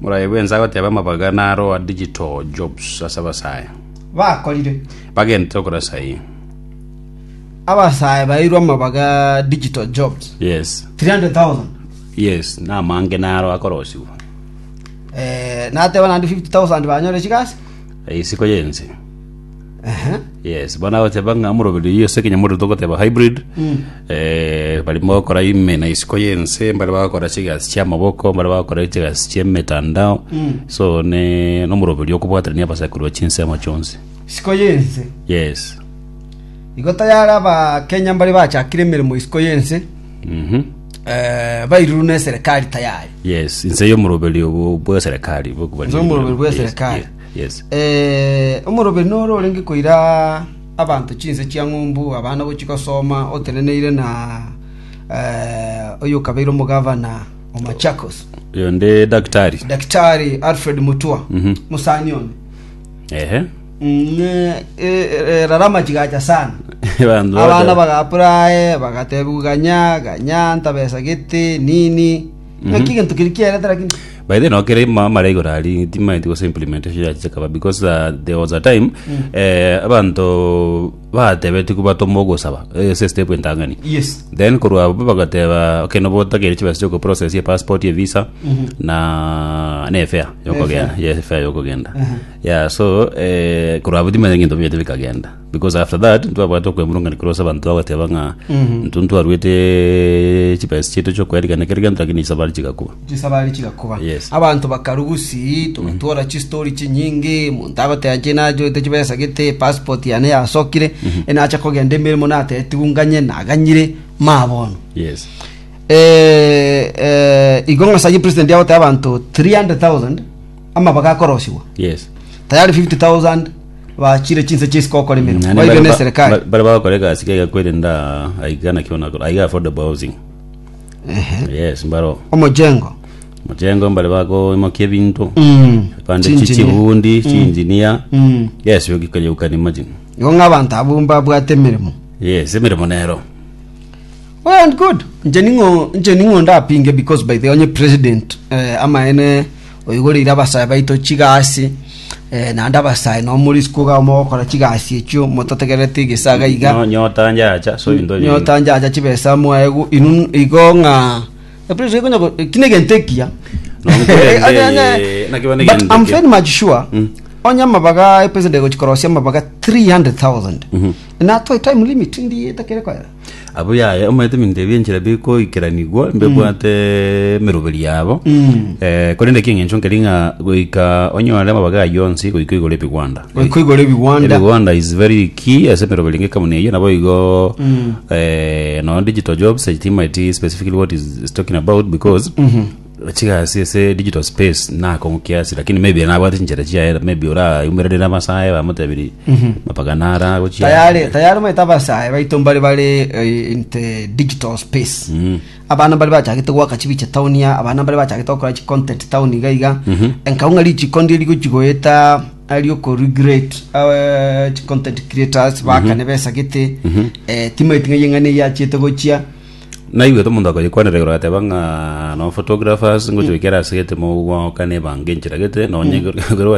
Morabe bwensa goteba amabaga naroa digital jobs ase abasae. Bakorire. Bagentete okora saii. Abasae baeirwe amabaga digital jobs. Yes. 300,000. Yes, na amange naro akorosigwa. Eh, nateba nandi 50,000 banyore chigasi. Isiko yense. Aha. yes bono agoteba ng'a moroberi oyio ase ekenyamorero togoteba hybrid eh, barimo gokora ime na isiko y'ense mbare bagokora chigasi chi'amaboko mbare bagokora chigasi chi'emetandao so ne nomoroberi okobwaterania abasaikuru ba chinsemo chionsi Isiko y'ense. yes Igo tayare abakenya mbare bachakire emeremo isiko y'ense. mhm Eh, bairuru neserekari tayari. yes inse y'omoroberi obo bw'eserekari Inse y'omoroberi bw'eserekari. Yes. Eh, omoroberi noro orenge koira abanto chinse chia ng'umbu abana gochia gosoma oteneneire na eh, oyo okabeire omogavana o Machakos Oyo nde daktari. daktari Alfred Mutua Mhm. musani one Ehe. Mm, eh, eh, rara amachigacha sana Bandu abana baja- bagapura aye bagatebiwa ganya ganya ntabesa gete nini Naki gento kiri kiarete lakini by the way no kere ma- mara igoro ari timaeti gose implementation ya chikaba because uh, there was a time eh, abanto batebeti kubatoma ogosaba eh, se step entang'ani yes then korwa abo bagateba okay nobo otagere chibesa chioko process ye passport ye visa na ne fare yokogenda ye fare yokogenda yeah so eh korwa abo timanya ngento bete bikagenda Because after that ntwabwate okwemurungania korwa ase abanto twagoteeba ng'a intwe ntwarwete chibesa chiaito chiokoerigania kera egento lakini chisabari chigakuba chisabari chigakuba Yes. abanto bakarugusi tugatora chistori chinyinge monto agoteba ki nachoete chibesa gete passport yane yasokire enacha kogenda emeremo natetigwe nganye naganyire ma bono yes Eh, eh, igo ng'asage president agoteba abanto 300000 amabaga akorosigwa yes tayari 50000 bachire chinse chia isiko gokora emeremo Naende bairwe bare na ba- eserikali ba- bare bagokora egasi kaiga kwerinda aiga naki onakora aiga affordable housing Ehe. yes mbaro omojengo mojengo mbare bagoimokia ebinto Mm. pande chi- Chinjinia. chibundi chinjinia Mm. yes you can, you can imagine igo ng'a abanto abwo mbabwate emeremo yes emeremo nero well and good nche ning'o nche ning'o ndapinge because by the onye president eh, amaene oigoreire abasae baito chigasi, eh, naende abasae nao more isiko iga mogokora chigasi echio motategereti egesaga iga No, nyota njacha so into nyingi. nyota njacha chibesa mwaegu inun igo ng'a Eprisi igo nyoko- kina egento ekiya Nonkwende, Eh, onye- onye- eh, naki bane but egento I'm ekiya. very much sure Mm. onye amabaga epresident egochikorosia amabaga 300,000 Mhm. inatoe time limit ndi etakere koera Abwo yaya omanyete ebinto ebi enchera bikoikeranigwa mbebwate emeroberi yabo Mm. Eh, korende eki eng'encho nkeri ng'a goika onyore amabaga ayio onsi goika igoro ebigwanda goika igoro ebigwanda ebigwanda is very key ase emeroberi ng'ekamuni eyio nabo igo Mm. eh, no digital jobs etima eti specifically what is, is talking about because Chigasi ase digital space nakong'u kiasi lakini maybe nabwate chinchera chiaye maybe orayumererire amasaye bamotebirie mapaka nara gochia tayari tayari omanyete abasae baito mbare bare eh, in the digital space Mm. abana mbare bachagete gwaka chibiche town ya abana mbare bachagete gokora chi content town iga iga Mhm. enkau ng'a richiko ndiri gochigoeta ari okoregrate eh, chi content creators bakane besagete eh, timaiti ng'a eyeng'ana eyachete gochia Naigwete omonto akoyekwanera igoro agateba ng'a no photographers ngochia goikera ase egetemogoka na ebango enchera gete nonye ekero